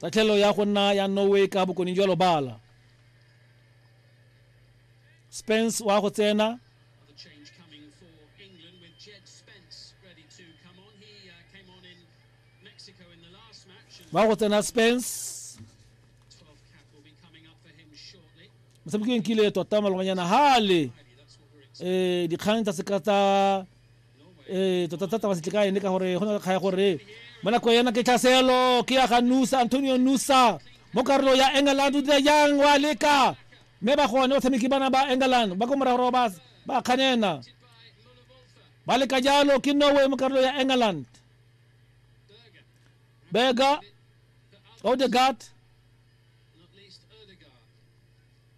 tatlhelo ya go nna ya norway ka bokone jwa lobala spence wa go tsena wa go tsena spence motshamekileng kile tota maloganyana hale um dikgang tsa seka tsa ee tota thata ba setle ka ene ka gore go na le kgaya gore mo nako yana ke tlhaselo ke ya ga nusa antonio nusa mo karolo ya england o dira yang wa leka mme ba gone batshameki bana ba england ba ko morago ba ba kganena ba leka jalo ke norway mo karolo ya england berger odegaard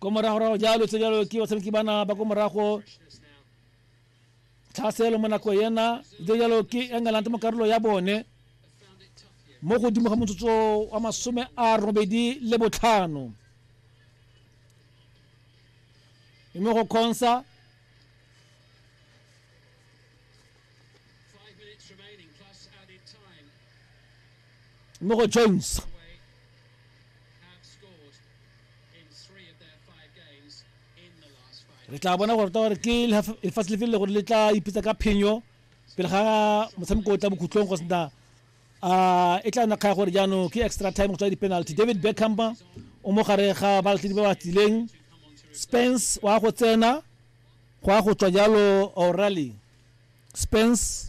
ko moragorago jalo tse jalo ke batshameki bana ba ko morago thaselo mo nako yena tse jalo ke england mo karolo ya bone mo godimo ga motsotso wa masome a robedi le botlhano mme go kgonsa Mo go Jones. re tla bona gore gore ke lefatshe lefe le gore le tla ipitsa ka phenyo pele ga motshameko o tla bokhutlong go sena uh, e tla nna kgaya gore jaanong ke extra time go tswa di-penalty david beckham o mo gare ga balatledi ba ba tsileng spence wa go tsena go ya go tswa jalo o'reilly spence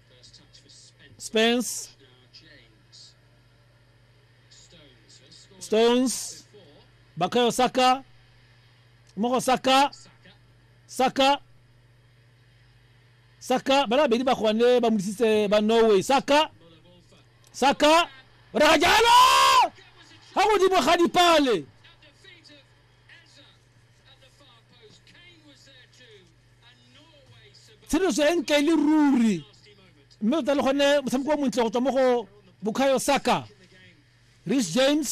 Spence. Stones. Bakayo Saka. Moko Saka. Saka. Saka. Bala bedi ba kwane ba mudisitse ba Norway. Saka. Saka. Rajalo! Ha godimo ga dipale. tsheletso e ntle e le ruri mme tota le gone motshameko o montle go tswa mo go bokhayo saka rich james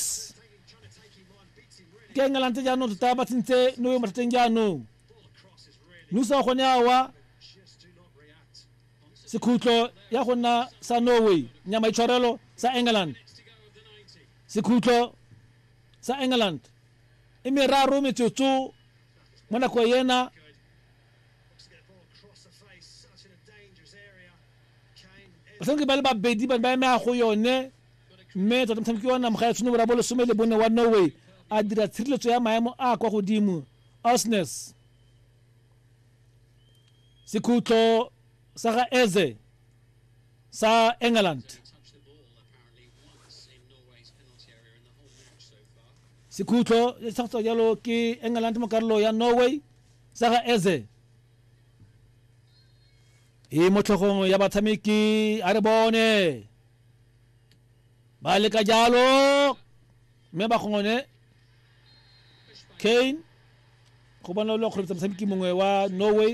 ke engelang tse jaanong tota ba tsentse no yo mathateng jaanong nusa wa gone awa sekhutlo ya go nna sa norway nyama itshwarelo sa england sekhutlo sa england e meraro metsotso mo nako ena batshameki ba le babedi ba ba emega go yone mme tota motshameki wa namoga ya tshwene borabo lesome le bone wa norway a dira tshireletso ya maemo a kwa godimo osnes sekhutlo sa ga eze sa england sekhutlo se sa go jalo ke england mo karolo ya norway sa ga eze e mo tlhogong ya batshameki a re bone ba leka jalo mme ba gongone kane go bona lo kgweletsa motshameki mongwe wa norway